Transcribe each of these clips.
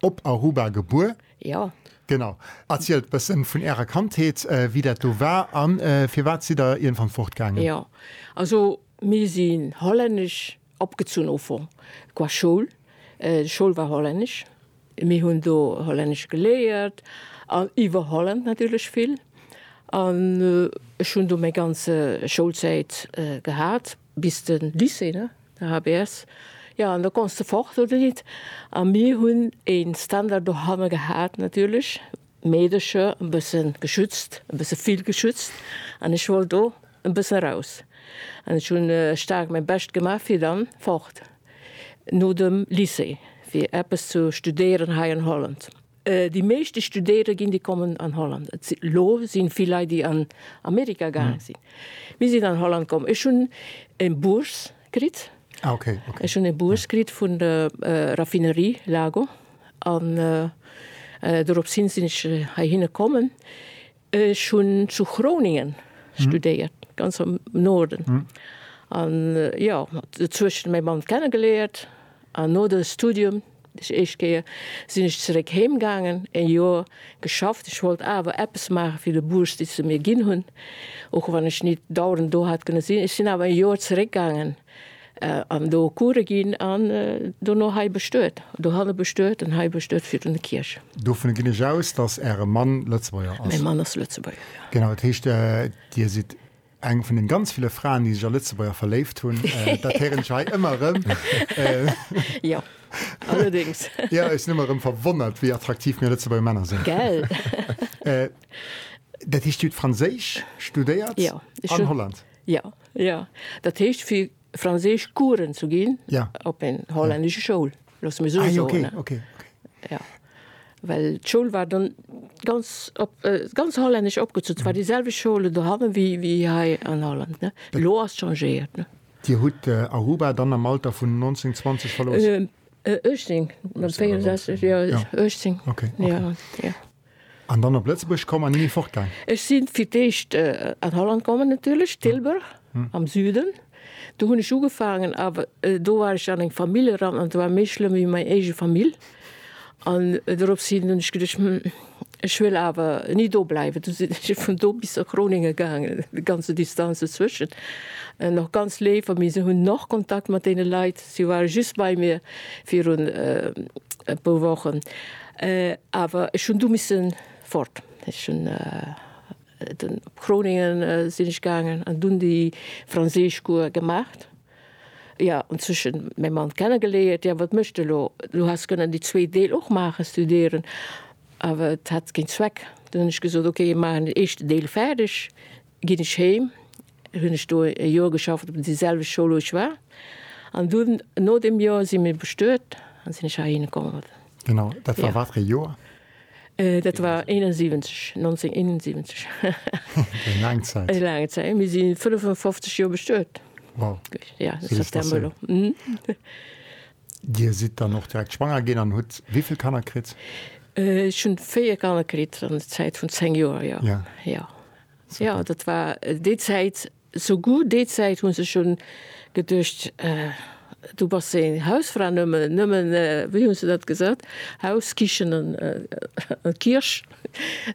Op Aruba gebuer? Jo. Genau. Erzielt e bëssen vun ärer Kandheet, wéi dat do war an firwat sidd der iergendwann fort gaangen? Jo. Also mir sinn hollännesch opgezunn au fond. Qua Schoul, d'Schoul war hollännesch, mir hunn do hollännesch geléiert an iwwer Holland natierlech vill an ech hunn do meng ganze Schoulzäit gehat. Bis de Lycée, ne? De HBS. Jo, an da konns de fort, oder nit? A mir hunn e Ständer dohanne gehat, natierlech, Meedercher e bësse geschützt, e bësse vill geschützt, an ech wollt do e bësse raus. An ech hunn staark mäi Bescht gemaach, fir dann fort no dem Lycée, fir eppes ze studéieren hei an Holland. Déi meeschte studéiere ginn, déi kommen an Holland. Et si lo sinn vill Leit, déi an Amerika gaange sinn. Mir sinn an Holland komm. Ech hunn e Bourse kritt. Ah ok, ok. Ech hunn e Bourse kritt vun der Raffinerie Lago an dorops hin sinn ech heihinne kommen. Ech hunn zu Groningen studéiert, ganz am Norden. An jo, dozou hu ech mäi Mann kennegeléiert. An no de Studium, déi éischt Kéier, sinn ech zeréck heem gaangen, e Joer geschafft. Ech wollt awer eppes maache fir déi Bourse, déi se mir ginn hunn, och wann ech nit dauernd do hat kënne sinn. Ech sinn awer e Joer zeréck gaangen. An do Coure ginn an dono hei bestuet, dohanne bestuet an hei bestuet fir un de Kierch. Dovun ginn ech aus, dass Äre Mann Lëtzebuerger ass? Mäi Mann ass Lëtzebuerger, jo. Genau, dat heescht, Dir sidd eng vun den ganz ville Fraen, déi sech a Lëtzebuerger verléift hunn. Dat héieren ech hei ëmmer erëm. Jo, allerdéngs. Jo, ech sinn ëmmer erëm verwonnert, wéi attraktiv mir Lëtzebuerger Männer sinn. Gell? Dat heescht, Dir hutt Franséisch studéiert an Holland? Jo, Jo, dat heescht fir Franséisch Coursen ze ginn op eng hollännesch Schoul, loosse mir esou soen. Ah, okay, okay. Jo, well d'Schoul war dann ganz op ganz hollännesch opgezunn, zwar déi selwecht Schoul dohannen wéi wéi hei an Holland, ne? Elo ass changéiert, ne? Dir hutt Aruba dann am Alter vun 19, 20 verlooss? 18, mat 64, jo, 18, jo, jo. An dann op Lëtzebuerg komm an nimmi fortgaang? Ech si fir d'éischt an Holland komm natierlech, Tilburg am Süden. Do hunn ech ugefaangen, awer do war ech an eng Famill eran an se war méi schlëmm wéi meng éige Famill. An dorops hin hunn ech geduecht, Hm, ech wëll awer ni do bleiwen. Du sinn ech vun do bis a Groningen gaangen, déi ganze Distanz dozwëschen. Nach ganz léif a mir hunn nach Kontakt mat deene Leit. Si ware just bei mir virun e puer Wochen. Awer ech hunn du misse fort. Ech hunn dunn op Groningen sinn ech gaangen an dunn déi Franséischcours gemaacht. Jo, an zwëschen mäi Mann kennegeleeërt. Jo, wat méchs de elo? Du häss kënnen déi zwee Deel och maachen, studéieren, awer et hätt keen Zweck. Dunn hunn ech gesot, ok, maachen den éischten Deel fäerdeg, Ginn ech heem, hunn ech do e Joer geschafft op déi selwecht Schoul wou ech war an dunn no deem Joer si mir bestuet an sinn ech heihinne komm. Genau, dat war wat fir ee Joer? Dat war 71, 1971. Eng laang Zäit. Mir si 55 Joer bestuet. Wow. Ja, dat ass der Mëller. Dir sidd dann och direkt schwanger ginn an hutt wéi vill Kanner kritt? Ech hunn 4 Kanner kritt an der Zäit vun 10 Joer, jo. Ja. Jo dat war déi Zäit sou gu, déi Zäit hu sech schon geduecht du bass eng Hausfra nëmmen nëmmen wéi hu se dat gesat Haus, Kichen an Kierch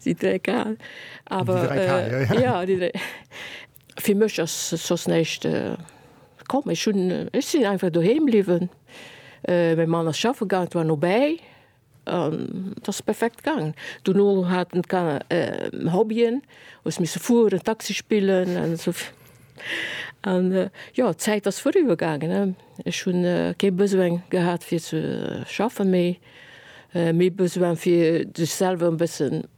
si dräi kal awer jo déi dräi fir mech ass soss näischt komm ech hunn ech sinn einfach doheem bliwwen. Mäi Mann ass schaffe gaang et war nobäi. Et ass perfekt gaangen. Dono haten d'Kanner Hobbyen, hu se misse fueren, Taxi spillen an esou virun. An jo, d'Zäit ass vorüber gaangen. Ech hunn kee Besoin gehat fir ze schaffen, mee méi Besoin fir sech selwer e bëssen